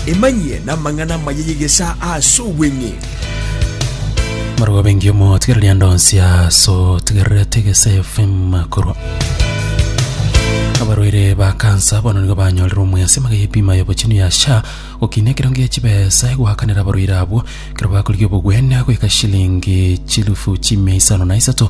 Emanyie n'amang'ana amaya y'egesaa ase obweng'e. Marwa bengi omo tigereria ndonsi aso tigererete egese FM korwa abarwaire ba kansa bono nigo banyorire omwesi maga y'ebima y'obochenu ya sha gokina ekerango ya chibesa egoakanera abarwaire abwo ekero bakorigia obogwene goika shilingi chilufu chimia isano na isato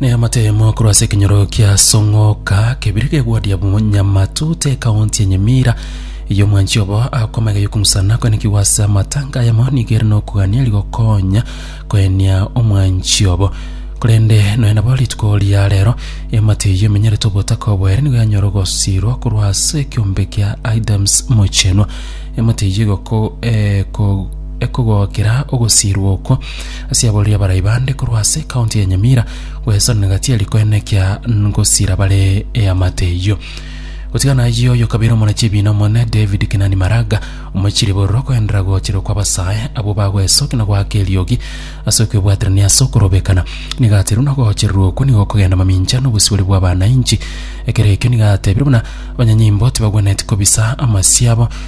Neamatemo korwa ase ekenyoro kia Song'oka kebire gegoadia Nyamatu te ekaunti ya Nyamira eyo omwanchi obo akomaiga yokumusana kwenekigwa ase amatanga ayamo nigo ere nokogania rigokonya koenia omwanchi obo korende nonya nabo rituko ria rero eamate eyio emenyerete obotaka obo ere nigo yanyora ogosirwa korwa ase ekiombe kia Adams Mochenwa eamate eyio egoko- eko- ekogokera ogosirwa okwo Ase aborori abarai bande korwa ase ekaunti ya Nyamira gwesanire Gatieri koenekia ngosira bare eamate eyio. Gotigana ayio oyo kabere omona chibiina omonene David Kinani Maraga omochirie bororo koenderera gocherwa kwa basae abwo bagwesoki na goaka eriogi ase okwebwaterania ase okorobekana. Niga aterwe na ogochererwa okwo nigo okogenda mamincha na obosibore bwa abanainchi. Ekero ekio niga atebire buna abanyanyimbo tibagwenetie kobisa amasio abo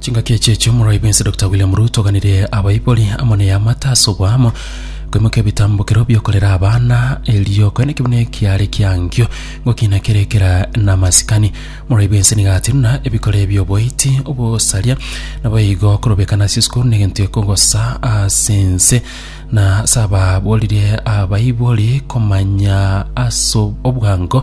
Chingaki echi echio Omorwai bwensi Doctor William Ruto oganirie abaibori amo neyamate ase oboamo koimoka ebitambokero biokorera abana erio kore nekebuna ekiare kiangio gokina kere ekera namasikani. Omorwai bwensi nigo atiruna ebikore bioboiti, obosaria naboigo korobekana ase esukuru negento ekogosa ase ense na ase ababoririe abaibori komanya ase obwango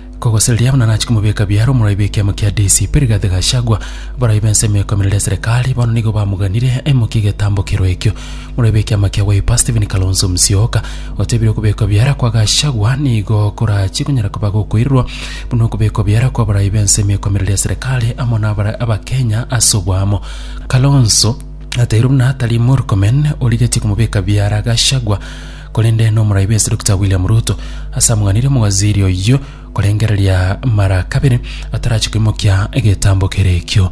Kogosereria buna nachi komobeka biara omoraibe ekiama kia DCP Rigathi Gachagua, abaraibe ensemo ekoimerera eserekari bono nigo bamoganire aimokie egetambo kerwa ekio. Omoraibe ekiama kia Wiper Stephen Kalonzo Musyoka otebire okobekwa biara kwa Gachagua nigo korachie konyara koba gokoirerwa buna okobekwa biara kwa abaraibe ensemo ekoimerera eserekari amo nabare abakenya ase oboamo. Kalonzo ateire buna tari Murkomen origetie komobeka biara Gachagua, Korende nomoraibe ase Doctor William Ruto ase amang'anire omowaziri oyio korengereria mara kabere atarachi koimokia egetambo kere ekio.